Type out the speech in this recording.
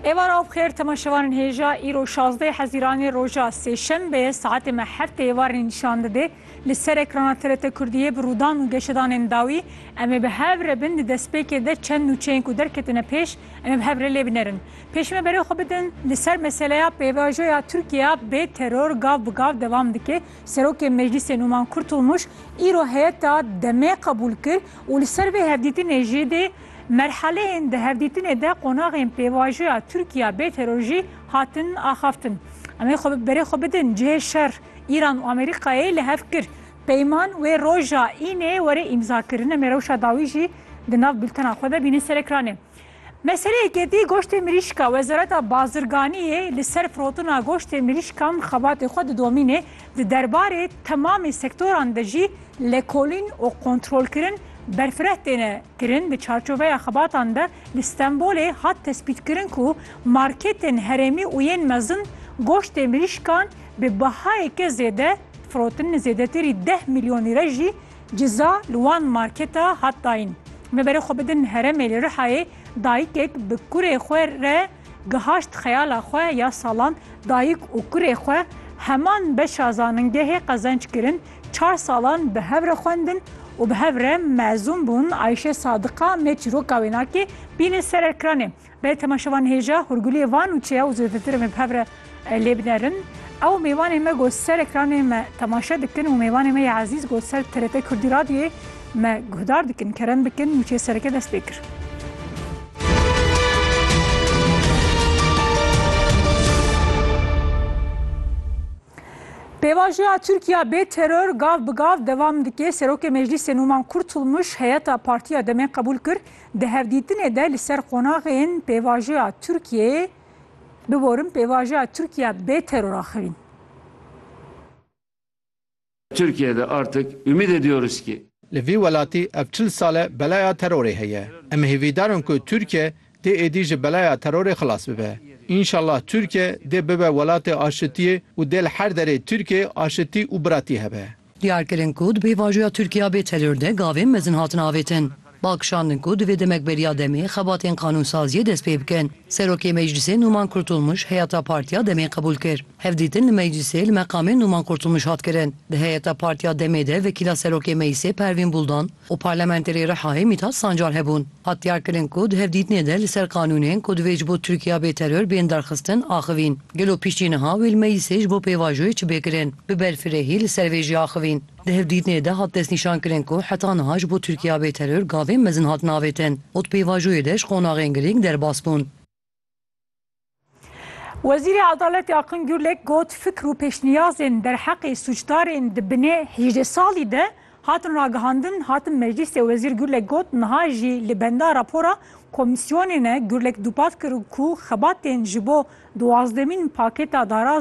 Êvar av xêr temaşevanên hêja îro 16 Hezîranê roja Sêşembe saetê me heftê êvarên nîşan didê li ser ekrana TRT Kurdiyê bi rûdan û geşedanên dawî em ê bi hev re bin di destpêkê de çend nûçeyên ku derketine pêş em ê bi hev re lê binerin pêş me berê xwe bidin li ser meseleya pêvajoya Tirkiya bê teror gav bi gav devam dike Serokê Meclîsê Nûman Kurtulmuş îro heyeta demê qebûl kir û li ser vê hevdîtinê jî dê Merhaleyên di hevdîtinê de qonaxên pêvajoya Tirkiya bê teror jî hatin axaftin. Em ê xwe bi berê xwe bidin cihê şer. Îran û Amerîkayê li hev kir peyman wê roja înê were îmzakirin. Em ê rewşa dawî jî di nav bultena xwe de bînin ser ekranê. Meseleyekê dî goştê mirîşka Wezareta Bazirganiyê li ser firotina goştê mirîşkan xebatê xwe didomînê. Di derbarê temamê sektoran de jî lêkolîn û kontrolkirin berfireh têne kirin. Di çarçoveya xebatan de li Stenbolê hat tespîtkirin ku marketên herêmî û yên mezin goştê mirîşkan bi bihayeke zêde firotin, zêdetirî deh milyon lîre jî ciza li wan marketa hat dayîn. Me berê xwe bidin herêmê li Rihayê dayikek bi kurê xwe re, Gihaşt xeyala xwe ya salan dayik û kurê xwe heman beşa zaningehê qezenç kirin, çar salan bi hev re xwendin û bi hev re mezûn bûn. Ayşe Sadiqa me çîroka wênakê bîne ser erkranê. Belê temaşevan hêja hûrguliyê van û çêya û zêdetirê me bi hev re Lê binerin ew mêvanê me ku ser ekranê me temaşe dikin û mêvanê me yê ezîz ku ser TRT Kurdî Radyoyê me guhdar dikin kerem bikin nûçeyê sereke dest pê kir. Pêvajoya Tirkiya bê teror gav bi gav devam dike. Serokê Meclîsê Nûman Kurtulmuş heyeta Partiya Demê qebûl kir. Di hevdîtinê de li ser qonaxên pêvajoya Tirkiyeyê Biborin pêvajoya Tirkiya bê teror a xewîn. Türkiye de artık ümit ediyoruz ki. Li vî welatî ev çil sal e belaya terorê heye. Em hêvîdar in ku Tirkiye dê êdî ji belaya terorê xilas bibe. Înşallah Tirkiye dê bibe welatê aşitiyê û dê li her derê Tirkiyeyê aşitî û biratî hebe. Diyar kirin ku di pêvajoya Tirkiya bê teror de gavên mezin hatin avêtin. Bal kişandin ku divê demek beriya demê xebatên qanûnsaziyê dest pê bikin. Serokê Meclîsê Nûman Kurtulmuş heyeta Partiya demê qebûl kir. Hevdîtin li Meclîsê li meqamê Nûman Kurtulmuş hat kirin. Di heyeta Partiya demê de vekîla Serokê Meclîsê Pervîn Buldan, û Parlamenterê Rihayê Mîtat Sancar hebûn. Hat diyarkirin ku di hevdîtinê de li ser qanûnên ku divê ji bo Tirkiya bê teror bên derxistin axivîn. Gelo piştî niha wê li Meclîsê ji bo pêvajoyê çi bê kirin? Bi berfirehî li ser vê jî axivîn. Di hevdîtinê de hat destnîşankirin ku heta niha ji bo Tirkiya bê teror gavên mezin hatin avêtin û di pêvajoyê de ji qonaxên girîng derbas bûn. Wezîrê Edaletê Akın Gürlek got fikr û pêşniyazên derheqê sûcdarên di binê hîjdeh salî de hatin ragihandin hatin meclîsê Wezîr Gürlek got niha jî li benda rapora komîsyonê ne Gürlek dûpatkiru ku xebatên ji bo duwazdemîn pakêta darazê